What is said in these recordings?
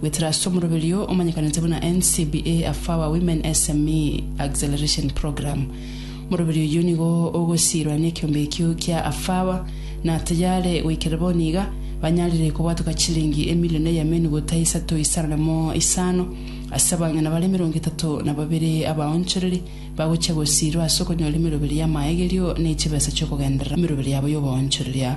Weterasto Omoroberio omanyekanete buna NCBA Afawa Women SME Acceleration Program. Omoroberio oyio nigo ogosiirwa nekiombe ekio kia Afawa, na tayare goikera bono iga banyarire kobwatoka chilingi emilion eya menu gota isato isano na mo isano ase abang'ina bare emerongo etato na babere abaonchoreri bagochia gosiirwa ase okonyora emeroberi y'amaegerio ne chibesa chiokogenderera emeroberi yabo y'oboonchoreria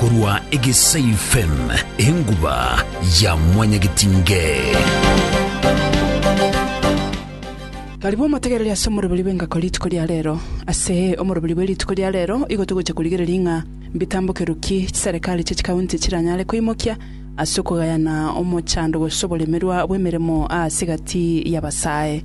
Korwa Egesaifm, enguba ya Mwanyagetindee. Barabwo motegereri ase omoroberi bw'engako rituko ria reero. Ase omoroberi bwe rituko ria reero igo togocha korigereria ng'a mbitambokerwe ki chiserekari chie chikaunti chiranyare koimokia ase okogayana omochando gose oboremerwa bw'emeremo aase egati y'abasae.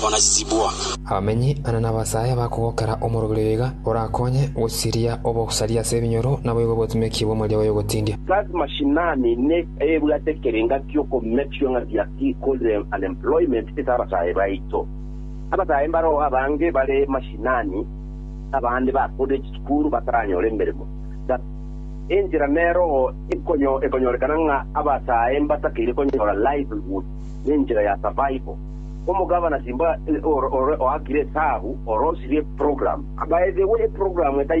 bona chisiibwa. Abamenyi ane nabasae bakogokera omorobiri oyo iga orakonye gosiria obosaria ase ebinyoro naboigo obotumeki bw'omoria oye ogotindia. Kazi mashinani ne ebwate ekerenga kioko make sure ng'a their key called unemployment ase abasae baito. Abasae mbaroo abange bare mashinani abande bakorire chisukuru bataranyora emeremo. That enchera neroo ekonyorekana ng'a abasae mbatakeire konyora livelihood. nenchera ya survival. Omogavana Simba ore oakire esabu ore osirie eprogramu. By the way eprogramu etaiyo